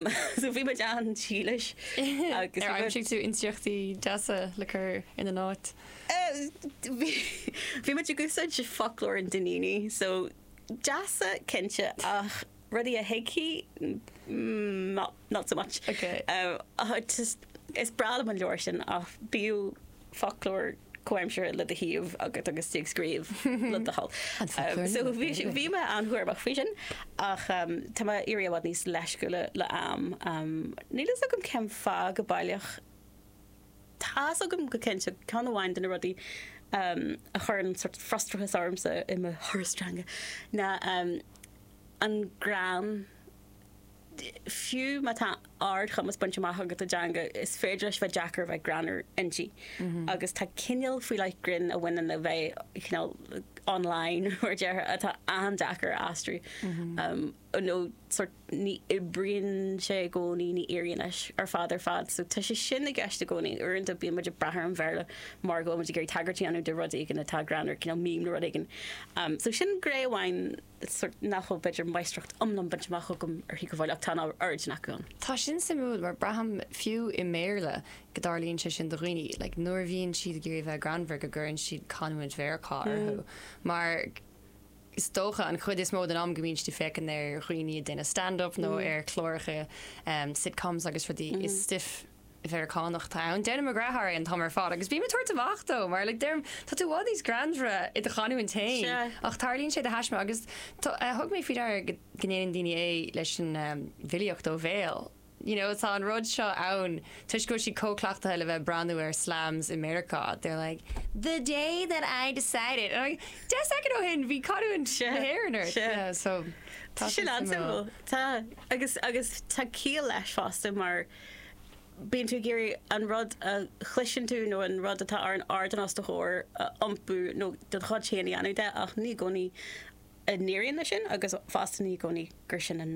So bhí muid an-dílis agus Ar bhí muid. aimsigh tú intriachtaí deasa le cur ina n-áit? Bhí bhí muid ag úsáid foclóir an Duinnínigh so deasa cinnte ach rudaí a thuigfí not not so much. Okay. Ach just is breá liom an leabhar sin ach b'fhiú. foclóir comhaimseartha le do thaobh agat agus tú ag scríobh le do thoil. So bhí mé an-chúramach faoi sin ach tá mé ag éirí i bhfad níos leisciúla le ham. Níl fhios agam cén fáth go baileach. Tá fhios agam go cinnte ceann amháin de na rudaí a chuireann sórt frustrachas ormsa i mo thuras teanga ná an greann Fiú má tá ardchumas bainte amach agat i dteanga, is féidir leis a bheith deacair a bheith greannmhar inti. Agus tá cineál faoi leith grinn a bhaineann le bheith cineál online, mar a déarfá, atá an-deacair a aistriú. Nó sórt ní oibríonn sé i gcónaí, ní éiríonn leis ar fad ar fad. So tá sé sin i gceist i gcónaí. Uaireanta bíonn muid ag brath ar an Bhéarla mar go bhfuil muid ag iarraidh tagairt a dhéanamh do rud éigin atá greannmhar, cineál meme nó rud éigin. So sin gné amháin. sórt nach bhfuil b'fhéidir máistreacht iomlán bainte amach agam uirthi go fóill ach tá an oiread acu ann. Tá sin suimiúil mar braithim fiú i mBéarla go dtarlaíonn sé sin do dhaoine like nuair a bhíonn siad ag iarraidh a bheith greannmhar go gcuireann siad canúint Mheiriceá orthu mar is dócha an chuid is mó den am go mbíonn siad ag féachaint ar dhaoine ag déanamh stand up nó ar chláracha sitcoms agus rudaí is stuif Mheiriceánach atá ann. Déanann mo dheartháir é an t-am ar fad agus bím ag tabhairt amach dó mar like deirim tá tú i bhfad níos greannmhaire i do chanúint féin Sea. ach tarlaíonn sé de thaisme agus tá, thug mé faoi deara go, go ndéanann daoine é leis an em bhfilíocht ó bhéal you know tá an rud seo ann toisc go bhfuil siad chomh cleachtaithe le bheith ag breathnú ar slams i Meiriceá they're like the day that I decided and I'm like deich soicind ó shin bhí canúint Sea, na hÉireann ort sea. yeah so tá Tá sé sin suimiúil. an-suimiúil. Tá. Agus, agus tá ciall leis fosta mar Bíonn tú ag iarraidh an rud a chloiseann tú nó an rud atá ar an ardán os do chomhair a iompú nó do do chuid féin a dhéanamh de ach ní i gcónaí a n-éiríonn leis sin agus fosta ní i gcónaí gur sin an,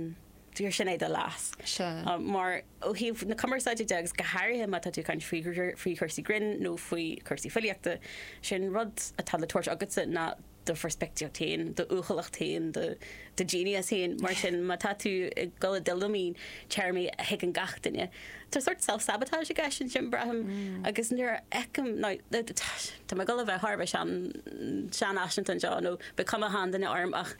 gur sin é do leas. Mar, ó thaobh na cumarsáide de agus go háirithe má tá tú ag caint faoi, faoi chúrsaí grinn nó faoi chúrsaí filíochta, sin rud atá le tabhairt agatsa ná do pheirspictíocht féin, d'uathúlacht féin, do do genius féin. Mar sin má tá tú ag dul i dtuilleamaí téarmaí a thuigeann gach duine, tá sórt self-sabotage i gceist ansin, braithim, agus nuair a fheicim, now, tá mé ag dul a bheith thar a bheith sean, seanfhaiseanta anseo nó beidh cuma sheanduine orm ach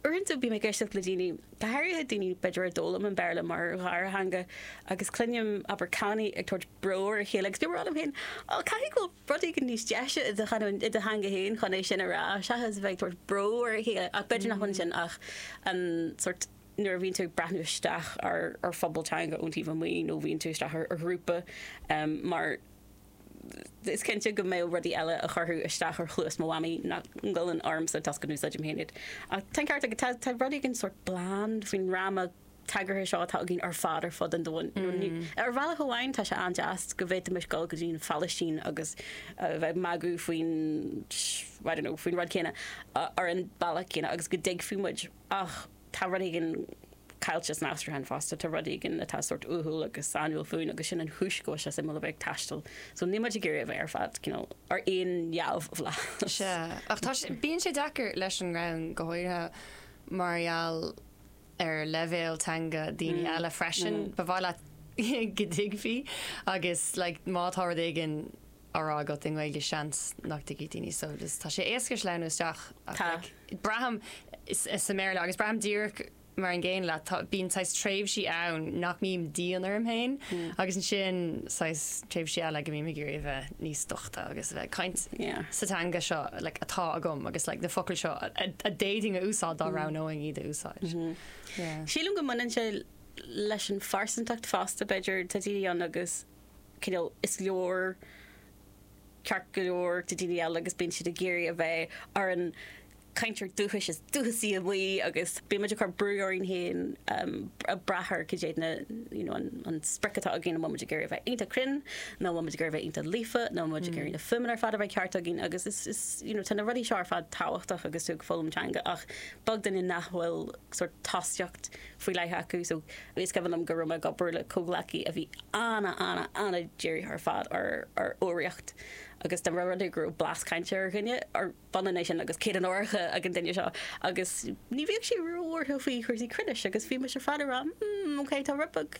uaireanta bím ag éisteacht le daoine, go háirithe daoine b'fhéidir a d'fhoghlaim an Béarla mar dhara theanga agus cluinim abair, canny ag tabhairt bro ar a chéile agus bím ag rá liom féin, oh, caithfidh go bhfuil rud éigin níos deise i do chanúint, i do theanga féin chun é sin a rá seachas a bheith ag tabhairt bró ar a chéile ach b'fhéidir nach bhfuil ansin ach an sórt, nuair a bhíonn tú ag breathnú isteach ar phobal teanga ón taobh amuigh nó nuair a bhíonn tú isteach ar ghrúpa mar is cinnte go mbeadh rudaí eile a chuirfeadh isteach ar chluas mo mhamaí nach ngoilleann ormsa toisc go n-úsáidim féin iad ach tá an ceart agat, tá rud éigin sórt bland faoin fhráma tagartha seo atá againn ar fad ar fud an domhain. Ar bhealach amháin tá sé an-deas go bhféadfaimis dul go dtí an Phalaistín agus a bheith ag magadh faoin, I don't know, faoin rud céanna ar an mbealach céanna agus go dtuigfeadh muid a, ach tá rud éigin caillte san aistriúchán fosta, tá rud éigin atá sórt uathúil agus sainiúil fúinn agus sin an chúis go bhfuil sé suimiúil a bheith ag taisteal. So níl muid ag iarraidh a bheith ar fad, you know, ar aon neamhbhlas. Sea, ach tá sé, bíonn sé deacair leis an ngreann, go háirithe mar gheall. ar leibhéal teanga daoine eile freisin. Ba mhaith leat go dtuigfí agus like má tá rud éigin á rá agat i nGaeilge seans nach dtuigfidh daoine so just tá sé éasca sleamhnú isteach ach Tá. like braithim sa mBéarla agus braithim díreach mar an gcéanna leat tá, bíonn saghas tréimhsí ann nach mbím dian orm féin agus ansin saghas tréimhsí eile go mbím ag iarraidh a bheith níos dochta agus a bheith ag caint sa teanga seo like atá agam agus like na focail seo a d'fhéadfainn a úsáid dá roghnóinn iad a úsáid. Yeah. Sílim go mbaineann sé leis an phearsantacht fosta b'fhéidir. Tá daoine ann agus cineál is leor ceart go leor tá daoine eile agus bíonn siad ag iarraidh a bheith ar an cainteoir dúchais is dúchasaí amuigh agus bíonn muid ag cur brú orainn féin a brath ar cad é na, you know, an sprioc atá againn, an bhfuil muid ag iarraidh a bheith iontach cruinn nó an bhfuil muid ag iarraidh a bheith iontach líofa nó an bhfuil muid ag iarraidh na fuaimeanna ar fad a bheith ceart againn agus is, is, you know, tá na rudaí seo ar fad tábhachtach agus tú ag foghlaim teanga ach is beag duine nach bhfuil sort tosaíocht faoi leith acu so is cuimhin liom go raibh mé ag obair le comhghleacaí a bhí ana, ana, ana-dírithe ar fad ar, ar fhoghraíocht agus go raibh rudaí go raibh blas cainte ar dhuine, ar, Baile Mhic Íre agus céad onóracha ag an duine seo agus ní bhíodh sé róbhuartha faoi chúrsaí cruinnis agus bhí mise ar fad ag rá 'mm ok tá rud beag